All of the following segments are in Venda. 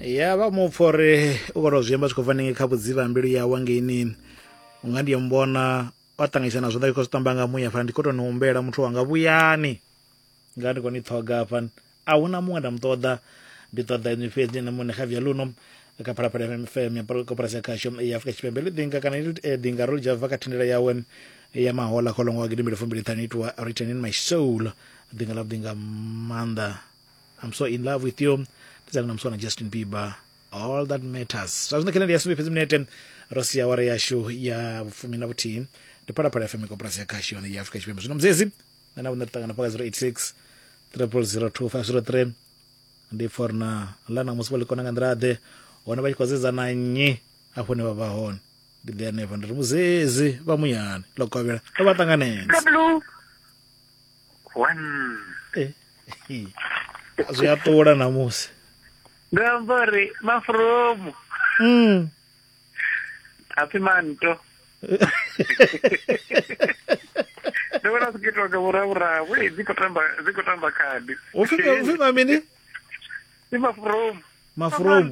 ya vha mupfa uri u khou tou zwi amba zwi khou bva ninge kha vhudzivha mbilu yawe ngeini u nga ndi mbona wa ṱanganyisa na zwanḓa zwi khou zwi tamba nga muya fana ndi khou tou ni humbela muthu wanga vhuyani nga ndi khou ni ṱhoga hafha a hu na muṅwe nda mu ṱoḓa ndi ṱoḓa inwi fhedzi na muṋe kha via luno kha phalaphala fm ya koporasi ya khasho ya afurika tshipembe ḽi ḓinga kana ḽi eh, ḓinga ro dzhava kha thendela yawe ya mahola kholomo wa gidimbili fumbili ṱhanu itiwa written in my soul ḓinga ḽa ḓinga maanḓa I'm so in love with you ndidzanga na muswana justin bieber all that matters zwa zwino khenedi ya sumbe fhedzi minete ro sia wara yashu ya vhufumi na vhuthihi ndi phalaphala fm koporasi ya khashi yone ya afrika tshipembe zwino muzezi na navho nda ṱangana paka 086 002503 ndi for na ḽa na musi vha ḽikona nga nḓila ḓe hone vha tshi khou zedza na nnyi afho ne vha vha hone ndi ḓe hanefha ndi ri muzezi vha muyani ḽo kovhela ro vha ṱanganedza Eh, zwi a ṱula namusi ndo amba uri mafromu mm. hapfi manto ndo vhona zwi khou itiwa nga vhuravhuravu e dzi khou tamba dzi khou tamba khadi upfi ma mini i mafromu mafromu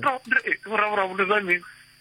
vhuravhuravu ndi zwa mini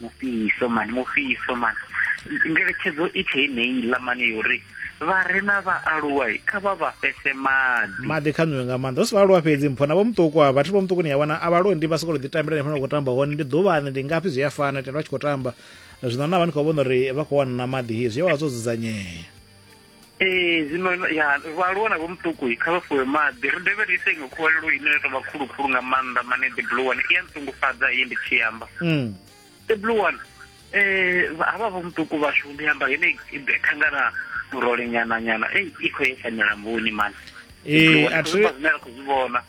mufhiso mani mufhiso mani ngeletshedzo i tshe heneiḽa mani yo ri vha re na vhaaluwa kha vha vha fhese maḓi maḓi kha nwiwe nga maanḓa hu si vhaaluwa fhedzi mpho na vho muṱuku a vhathu vho muṱuku ni ya wana a vhalondi vha sokou ḓi tambela ni fana khou tamba hone ndi ḓuvhani ndi ngafhi zwi a fana tenda vha tshi khou tamba zwino na vha ni khou vhona uri vha khou wana na maḓi zwi a vha zwo dzudzanyea ee zwino ya vhaaluwa na vhomuṱuku kha vha fuwe maḓi ri dovhe ri ise iṅwe khuvhalelo ine ya tovha khulukhulu nga maanḓa mane the blue one i ya nṱungufhadza iyi ndi tshi amba mm. the blue one um havha vhomuṱuku vhashu ndi amba hene khangana murole nyana nyana ei i khou yesa milamboni mani ee a thi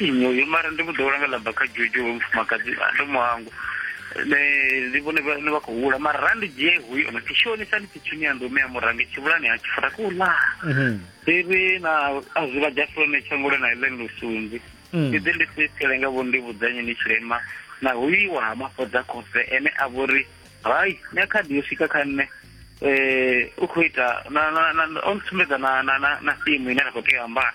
uyo mara ndi vhuḓo langa laba kha dzhudzhu hoyu mufumakadzi ndo mu hangwa ndi vhone vhane vha khou hula mara randi dzhie huyo no tshi shonisa ndi tshitshini ya ndume ya murange tshivhulani ha tshifura ku ḽa mhm. iri na a zwi vha dzha fulane tshangule na ile lusunzi mm. ndi ḓi ndi sisele nga vho ndi vhudzanye ni tshilema na huiwa ha mafhodza khofhe ene a vhori hai ni a khadi yo swika kha nṋe um u khou ita o ntsumbedza na fimu ine ra khou tea ambara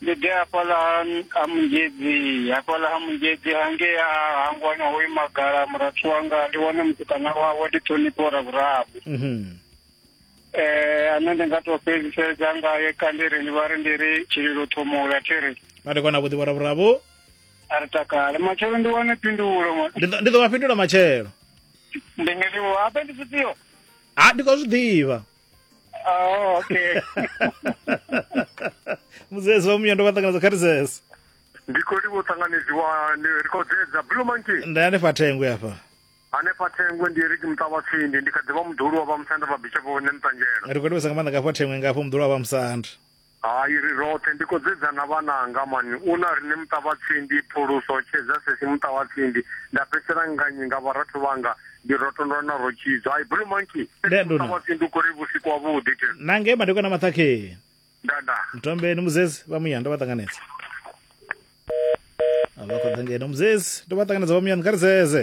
Ndi ḓe hafhaḽa ha ha Munzhedzi, hafhaḽa ha Munzhedzi hangei ha hangwana ho ima gala murathu wanga, ndi wane mutukana wawe ndi ṱhonifho ravhuraru. Mhm. Eh ane ndi nga tou fhedziseza ngae kandi ri ndi vha ri ndi ri tshililo ṱhomula thi ri Vha ndi kona vhuḓivho ravhuraru. a ri takale matshelo ndi wane phindulo mwa- Ndi ḓo- ndi ḓo vha fhindula matshelo. ndi nga livho habe ndi zwifhio Ha ndi khou zwi ḓivha. Oh, okay. muzezi wa muya ndo vha ṱanganedza kha ri zeze ndi khou livha u ṱanganedziwa ni ri khou dzedza blue monkey ndi hanefha thengwe afha hanefha thengwe ndi ri muṱa wa tsindi ndi kha ḓivha muḓulu wa vhamusanda vha bicha vhone muṱanjelo ri khou livhesa nga maanḓa ngafha thengwe ngafho muḓulu wa vhamusanda Hai ri roṱhe ndi kho dzedza na vhananga man u na rine muṱa vha tsindi phuluso tshedza sesi muṱa vha tsindi nda fhedzisela nganyi nga vharathu vhanga ndi rotondwa na ro tshidzo hai blue monkey sesi muṱa vha tsindi u kori vhusiku wa vhuḓi te na ngei madekwana maṱhakheni nda nda mtombeni muzezi vha muya ndo vha ṱanganedza a vha kho ḓa ngeno muzezi ndo vha ṱanganedza vha muya ni kha ri zeze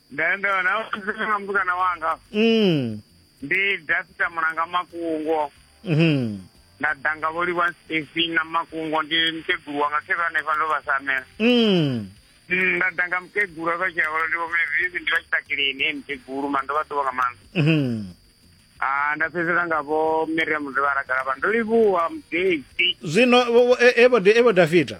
Nda- nda- na vhudzisa na mutukana wanga mm. ndi dafita mulanga makungo mhm. nda ḓa nga vho livha stefi na makungo ndi mukegulu wanga khe vha hanefha ndo vha samela Mm. Mm, nda ḓa nga mukegulu vha tshi avholo ndi vhomevizi ndi vha tshi takileni he mukegulu ma ndo vha ḓuvha nga maanḓa Mhm. Ah, nda fhedzela nga vho miriam ndo vha rakalaba ndo livhuwa mudesi zwino vho- vho- e- evo Da- evo dafita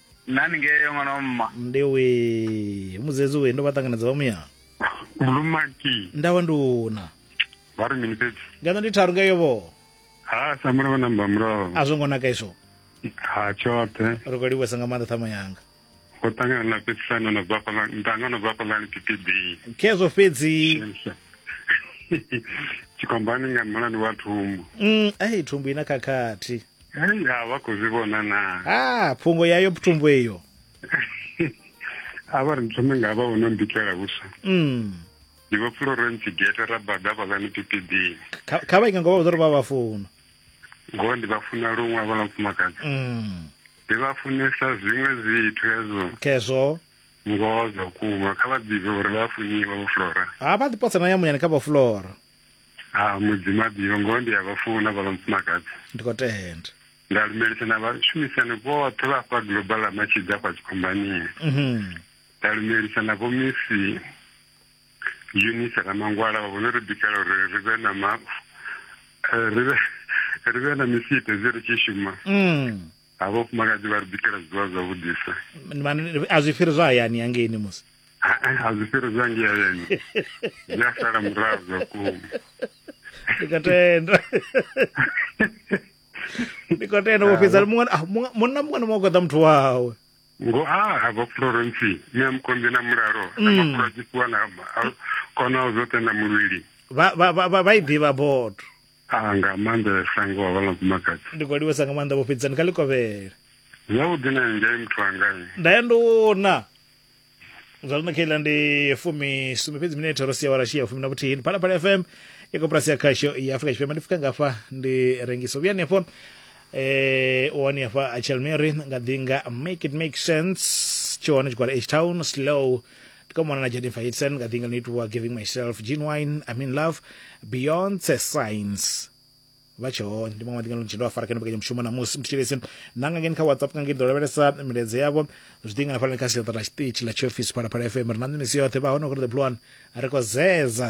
nani ngeo ṅwana wa mma ndi we muzedzi we ndo vha ṱanganedza vha muya bulumaki nda wa nduna vha ri mini fhedzi ngeno ndi tharu ngeyo vho ha samura vha namba muraho a zwo ngo naka izwo ha tshoṱhe ri khou livhuwesa nga maanḓa ṱhama yanga go ṱangana na fhedzisano na bva fhaḽa ntanga no bva fhaḽani ptb khezwo fhedzi tshikombani nga mulandu wa thumbu Mm, ai thumbu ina khakhathi Hei, ha vha khou zwi vhona na ha phungo yayo ptumbu eyo a vha ri thome nga vha vhono mbikela vhuswa mm. ndi vha florence gete ra bada vhalani pipidini kha vha inga ngo vha vhuḓo ri vha vha funa ngoho ndi vha funa luṅwe a vhala mufumakadzi mm. ndi vha funesa zwiṅwe zwithu hezwo khezwo ngoho zwa kuma kha vha ḓivhe uri vha funiwa vhaflora ha vha ḓipotsa na ya munyani kha vhaflora ha mudzimu abiyo ngoho ndi a vha funa vha mufumakadzi ndi khou tenda nda lumelisa na vhashumisani vhoṱhe vha fha global a matshidza kwa dzikhombaniya mhm. nda lumelisa na vhomisi unisa na mangwala vha vhone ri bikela uri ri vhe na ma eh, ri vhe na misite zwi ri tshi shuma mm. ha vhafumakadzi vha ri bikela zwiḽiwa zwavhudisa a zwi fhiri zwa hayani hangeini musi a zwi fhiri zwa ngei hayani zwi a sala murahu zwa kuma ndi ka tenda ndi ka tenda vho fhedza ah, munna muṅwe na muṅwe goḓa muthu wawe ngo a ah, hava florence ni a mukombi na mulalo na mm. mafhuro a tshifhiwa na kona zwoṱhe na muvhili vha i ḓivha bodo Ah, nga maanḓa ya shango wa vhala mufumakadzi ndi khou livhesa nga maanḓa vho fhedzani kha likovhele zwavhuḓi na ngai muthu wangai nda ya nduna zwa zwino khaila ndi fumisumbe fhedzi minete ro sia warashi ya fumi na vhuthihi ndi phalaphala fm ya koporasi ya khasho ya afrika tshipembe ndi fika ngafha ndi rengisa vhuyani hafho eh u wani hafha a chelmary nga ḓi nga make it make sense tshi hone tshigwada h town slow tikamwana na jaden faitsen ka ḓinga ḽinoitiwa giving myself jean wine i'm in love beyonce science vha tshe hone ndi maṅwe maḓinga ḽo tshendo afarekani mbekanyamushumo namusi mthetshelesi nanga ngeni kha whatsapp nga ngeni ḓo lavhelesa milaedza yavho zwi ḓinga hafhanani kha siaṱa ḽa tshiṱitshi ḽa tshiofisi phalaphala fm ri na nṋe misi yoṱhe vha hone kuri the blue one ri khou zeza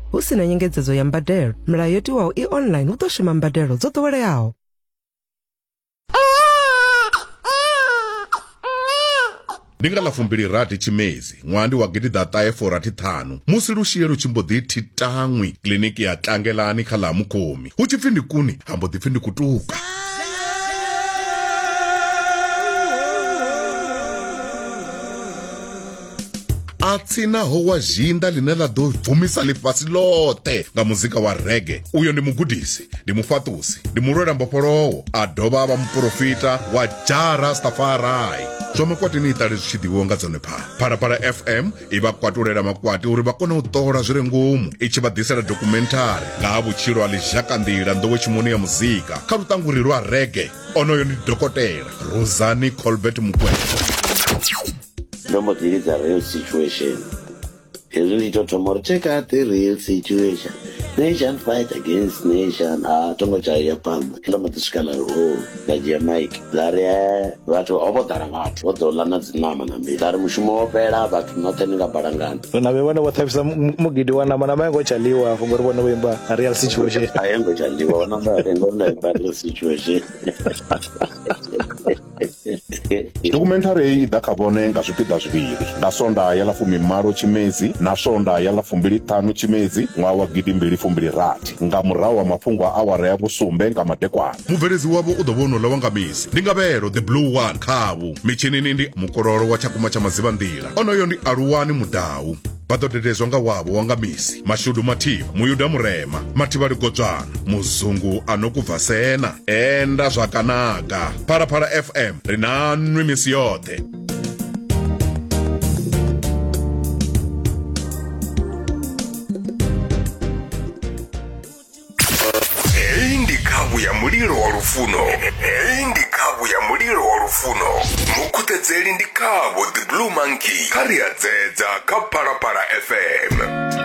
hu si na nyengedzedzo ya mbadelo milayo yo tiwaho i online hu ḓo shuma mbadelo dzo ḓoweleaho ndi nga ḽa fumbilirathi tshimedzi ṅwaha ndi wa gidiḓa ṱahe forathi ṱhanu musi lushie lu tshi mbo ḓi thi taṅwi kiliniki ya tlangelani kha ḽa mukhomi hu tshi pfi ndi kuni ha mbo ḓi pfi ndi kutuka a tsinaho wa zhinda ḽine ḽa ḓo bvumisa ḽifhasi ḽoṱhe nga muzika wa rege uyo ndi mugudisi ndi mufhaṱusi ndi mulwela mbofholowo a dovha a vha muporofita wa jara stafarai zwa makwati ni iṱale zwi tshi ḓivhiwa nga dzone phala phalaphala fm i vha kwatulela makwati uri vha kone u ṱola zwi re ngomu i tshi vha ḓisela dokhumenthari nga ha vhutshilo ha ḽizhakanḓila nḓowetshimoni ya muzika kha luṱanguri lwa rege onoyo ndi dokotela rosani colbert mukwevho ndo mbo ḓi lidza real situation hezwi ndi to thoma uri check out the real situation nation fight against nation a tongo tshaya phanḓa ndo mbo ḓi swika laro nda dzhia mike nda ri eh, vhathu ho vho ḓala vhathu vho ḓo ḽa na dziṋama na mbi nda ri mushumo wo fhela vhathu noṱhe ni nga balangana na vhe vhone vho ṱhavhisa mu- mugidi wa nama nama yango tshaliwa hafho ngori vhone vho imba real situation a yo ngo tshandiwa wanamba ngori nda imba real situation Dokhumenthari heyi i ḓa kha vhone nga zwipiḓa zwivhili, nga Swondaha ya ḽa fumimalo Tshimedzi na Swondaha ya ḽa fumbili-ṱhanu Tshimedzi ṅwaha wa gidi mbili fumbili rathi, nga murahu ha mafhungo a awara ya vhusumbe nga madekwana. Mubveledzi wavho u ḓo vha u no ḽa wa nga misi, ndi Ngavhelo the Blue One khavhu. Mitshinini ndi Mukololo wa Tshakumba tsha Madzivhanḓila, onoyo ndi Aluwani Mudau. vha ḓo dededzwa nga wavho wa nga misi mashudu mathivha muyuda murema mathivha ligodzwana muzungu a no kubva sena enda zwa kanaga phalaphala fm ri na nwi misi yoṱhe heyi ndi khavhu ya mulilo wa lufuno heyi ndi khavhu ya mulilo wa lufuno mukhuṱedzeli ndi khavho the blue monkey kha ri a dzedza kha phalaphala fm